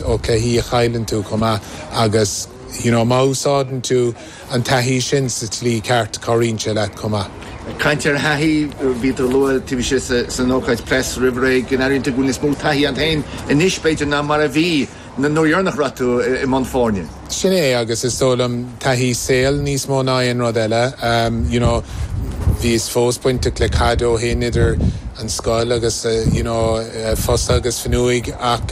ócáidí a chailleann tú chomh maith agus you know má úsáideann tú an taithí sin sa tslí ceart cabhraíonn sé leat chomh maith? Caint ar thaithí, bhí tú ag lua taobh istigh san ócáid press roimh ré go n-airíonn tú go bhfuil níos mó taithí a'd féin anois b'fhéidir ná mar a bhí an uair dheireanach a raibh tú i mbun foirne? Sin é agus is dóigh liom taithí saoil níos mó ná aon rud eile. You know bhíos fós bainteach le caide ó shin idir an scoil agus you know Fosa agus Fionnuig ach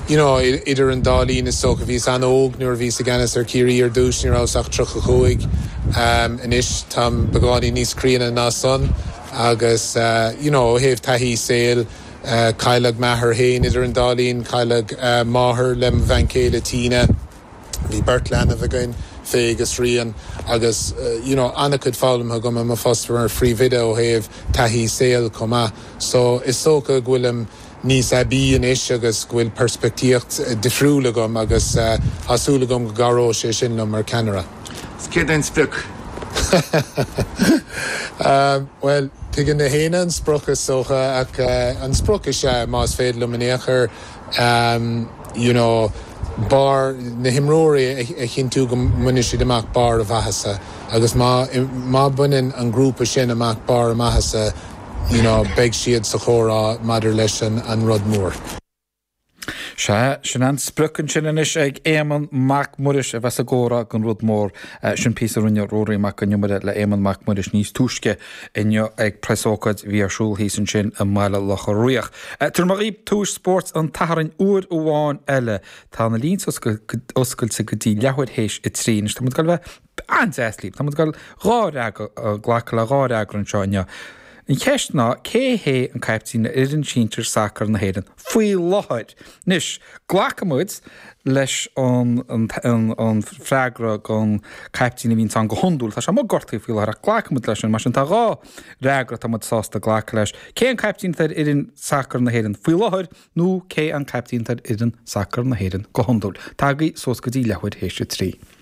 you know idir an dá linn is dócha bhíos an-óg nuair a bhíos i gceannas ar Chiarraí ar dtús ní rabhas ach tríocha chúig. Anois táim beagáinín níos críonna ná san agus you know ó thaobh taithí saoil, Cailleadh m'athair féin idir an dá linn, cailleadh athair le mo bhean céile Tina. Bhí beirt leanbh againn, Faye agus Rian, agus you know an-chuid foghlamtha agam i mo phost mar phríomhoide ó thaobh taithí saoil chomh maith. So is dócha go bhfuilim níos aibí anois agus go bhfuil peirspictíocht difriúil agam agus tá súil agam go gcabhróidh sé sin liom mar ceannaire. Is céard é an sprioc? Bhuel, tuigeann gach éinne an sprioc is dócha ach an sprioc is ea, más féidir liom in aon chor, you know, barr na himreoirí a chinntiú go mbainfidh siad amach barr a maitheasa agus má bhaineann an grúpa sin amach barr a maitheasa, you know, beidh siad sa chomhrá maidir leis an rud mór. Sea, sin an sprioc ansin anois ag Éamonn Mac Muiris a bheas i gcomhrá gon rud mór. Sin píosa a rinne Ruairí Mac Con Iomaire le Éamonn Mac Muiris níos túisce inniu ag preasócáid bhí ar siúl thíos ansin i mBaile Locha Riach. Tabharfaidh mé daoibh tomhas spóirt an tSathairn uair amháin eile. Tá na línte oscailte go dtí leathuair théis a trí anois. Tá muid ag dul a bheith. an-deas libh. Tá muid ag glacadh le dhá fhreagra anseo inniu. An cheist ná, cé hé an caiptín ar fhoireann sinsir sacair na hÉireann faoi láthair? Anois, glacfaidh muid leis an freagra gon caiptín a bhíonns ann go hiondúil. Tá sé amuigh gortaithe faoi láthair ach glacfaidh muid leis sin. Mar sin, tá dhá fhreagra atá muid sásta glacadh leis. Cé an caiptín atá ar fhoireann sacair na hÉireann faoi láthair nó cé an caiptín atá ar fhoireann sacair na hÉireann go hiondúil? Tá agaibh suas go dtí leathuair théis a trí.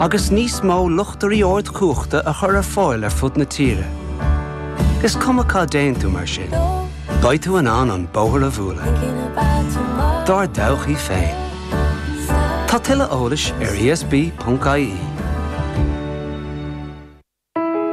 agus níos mó luchtairí ardchumhachta a chur ar fáil ar fud na tíre. Is cuma cá dtéann tú mar sin, beidh tú in ann an bóthar a bhualadh Dár dtodhchaí féin. Tá tuilleadh eolais ar esb.ie.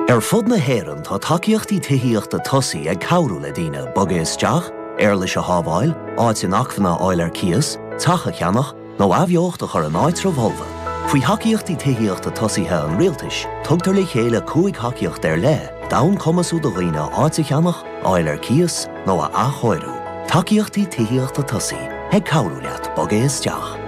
Ar fud na hÉireann tá tacaíochtaí tithíochta tosaigh ag cabhrú le daoine bogadh isteach, éarlais a shábháil, áit inacmhainne a fháil ar cíos, teach a cheannach, nó athbheocht a chur in áitribh fholmha. Faoi Thacaíochtaí Tithíochta Tosaigh an Rialtais, tugtar le chéile cúig thacaíocht ar leith d'fhonn cumasú do dhaoine áit a cheannach, a fháil ar cíos, nó a athchóiriú. Tacaíochtaí tithíochta tosaigh, ag cabhrú leat bogadh isteach.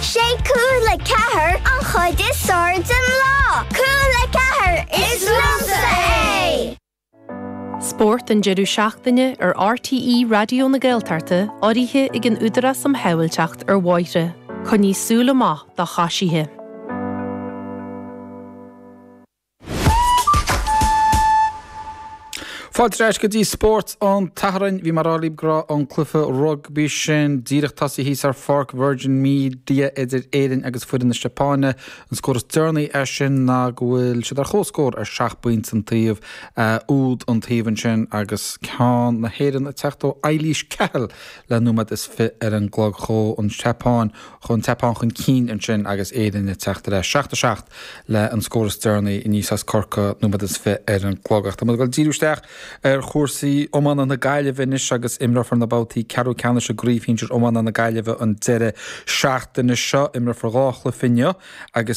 Sé cúl a ceathair an chuid is fearr den lá. Cúl a ceathair, is liomsa é! Spórt an deireadh seachtaine ar RTÉ Raidió na Gaeltachta urraithe ag an Údarás um Shábháilteacht ar Bhóithre. Coinnigh súil amach do choisithe. Fáilte ar ais go dtí Spórt an tSathairn. Bhí mar a bhí muid ag rá an cluiche rugbaí sin díreach tosaí thíos ar Pháirc Virgin Media idir Éirinn agus foireann na Seapáine. An scór is deireanaí air sin ná go bhfuil siad ar chomhscór ar seacht bpointe an taobh, úd an taobh ansin agus ceann na hÉireann ag teacht ó Eilís Cahill le nóiméad is fiche ar an gclog. Chuaigh an tSeapáin chun tSeapáin chun cinn ansin agus Éirinn ag teacht ar ais. 7 7 é an scór is deireanaí aníos as Corcaigh nóiméad is fiche ar an gclog ach tá muid ag goil ag díriú isteach ar chúrsaí iomána na Gaillimhe anois agus imreofar na babhtaí ceathrú ceannais i gCraobh Shinsir Iomána na Gaillimhe an deireadh seachtaine seo. Imreofar dhá chluiche inniu agus.